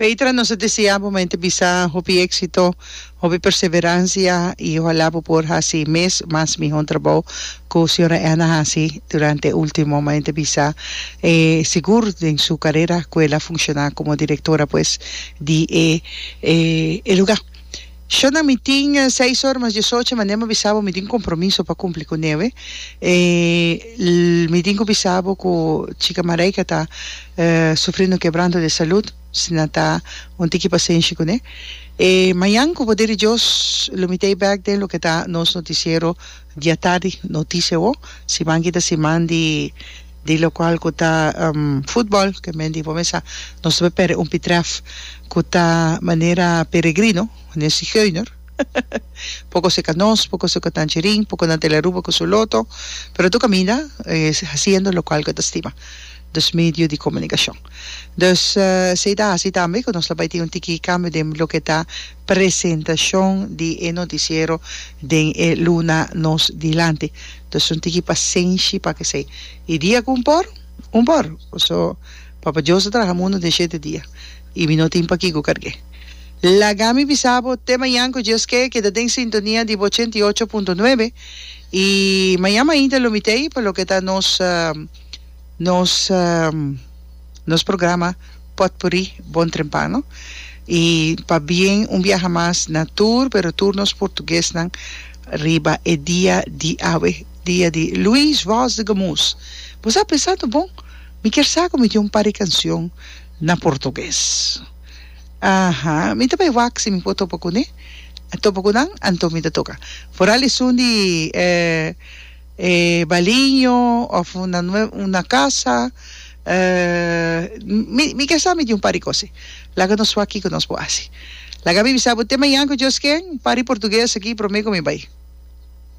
Petra nos a desea bo mente bisa hopi exito, hopi perseverancia y ojalá bo por haci mes mas miho trabao cu Sra. Anna a haci durante e ultimo mente bisa e sigur den su carera cu el a funciona como directora pues di e lugar. Shona, Mi tin seis or mas diesocho, ma Nemo bisa bo mi tin compromiso pa cumpli cu neve. E L. Mi tin cu bisa bo cu chica Mareika ta sufrindo quebranto de salud, si nan ta un tiki pasenshi cu ne. E Mayan, cu poder di Dios, lo mitey bek den loke ta nos noticiero diatardi, Noticia Awor, siman ki ta siman di. Di locual cu ta futbol, cu e men di bo mesa, nos ta bay perde un pitref cu ta manera peregrino, manera sigeuner. Poco si ca nos, poco si ca Tangerine, poco nan ta e la Aruba cu su loto, pero tur caminda e haciendo locual cu e ta stima, dus medio di comunicacion. Dus, si ta haci tambe cu nos lo bay tin un tiki cambio den loke ta. presentacion di e noticiero den e luna nos dilanti. Entonces un tiki pasenshi pa kesey. Y dia cu un por, un por. So, Papa Dios a traha mundo den shete dia. Y mi no tin pakico carge. Laga mi bisa bo te mayan cu Dios ke keda den sintonia di bo ochenta y ocho punto nuebe. Y mayan mainta lo mitey pa loke ta nos, nos. Nos programa Potpourri Bon Trempano i pa bien un biaha mas na tur pero tur nos portuguesnan riba e dia di awe, dia di Luis Voz de Gamus. Bo sa pensando bon, mi kier sa ku mi tin un par di kanshon na portugues. Aha, mi ta bai wak si mi por topa kuné, topa ku nan, anto mi ta toka. Foral esun di e. E baliño of un na casa mi ke sa mi di un par di cos laga nos wak kiko nos por haci laga mi bisa bo te mañan ku Dios ken un par di portugues aki prome ku mi bay.